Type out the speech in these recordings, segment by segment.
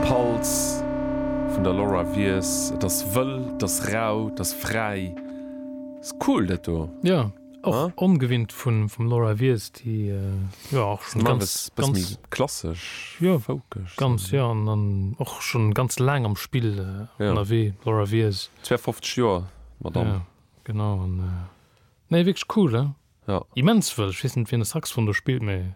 Pulse vun der Laura Wies, et ass wëll, et ass rau, et ass fräi, ass cool dat do. Jo, och ongewinnt vun vum Laura Wies, déi jo och schonn ganz, ganz, e bësse méi klassesch, jo, folkeg, ganz, jo, an an och schonn ganz laang am Spill ënnerwee, Laura Wies. 52 Joer d'Madame. Jo, genau, an nee, wierklech cool, he, immens wëll. Ech weess net, wien e Saxofon do spillt, mee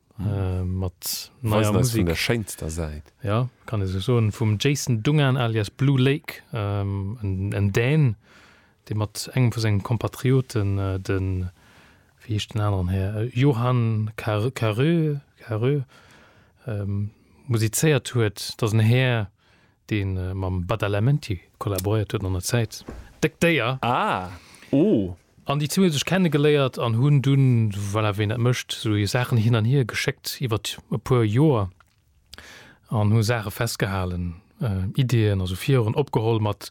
Äh, mat neier Musik. der schéinster Säit. Ja, kann ee sou soen. Vum Jason Dungan alias Blue Lake, ähm, en, en Dän, dee mat engem vu senge Kompatrioten, de, wéi heescht den aneren Här, Johan Car, Carö, Carö, ähm, musizéiert huet. Et ass en Här, dee mam Badalamenti kollaboréiert huet an der Zäit. Déck Déier! Ah! Oh! An déi zwee hu sech kennegeléiert an hunn dunn, voilà, wéi een dat mécht, esou hir Saachen hin an hier geschéckt iwwert e puer Joer an hu Saache festgehalen, Ideeën, also Viren opgeholl mat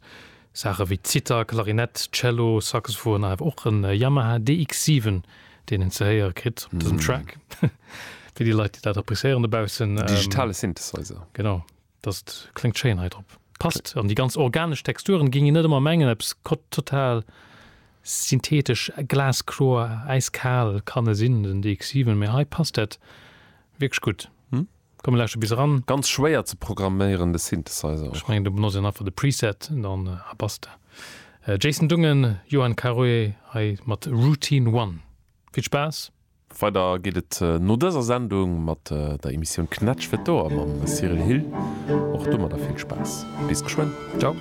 Saache wéi Zither, Klarinett, Cello, Saxophon a awer och e Yamaha DX7, deen een ze héiere kritt op dësem Track, fir déi Leit, déi dat appreciéieren dobaussen. Digitale Synthesizer. Genau. Datt kléngt schéin hei drop. Passt. An déi ganz organesch Texturen géing een net ëmmer mengen, eppes kott total synthetesch, glaskloer, äiskal kann e sinn, den DX7, mee hei passt dat wierklech gutt. Komm mir lauschteren bis eran. Ganz schwéier ze programméieren de Synthesizer och. Ech mengen do benotzt een einfach de Preset dann a basta. Jason Dungen, Johan Caroe hei mat Routine One. Vill Spaass! Weider geet et no dëser Sendung mat der Emissioun Knätsch fir d'Ouer mam Cyril Hill. Och domadder vill Spaass. Bis geschwënn. Ciao.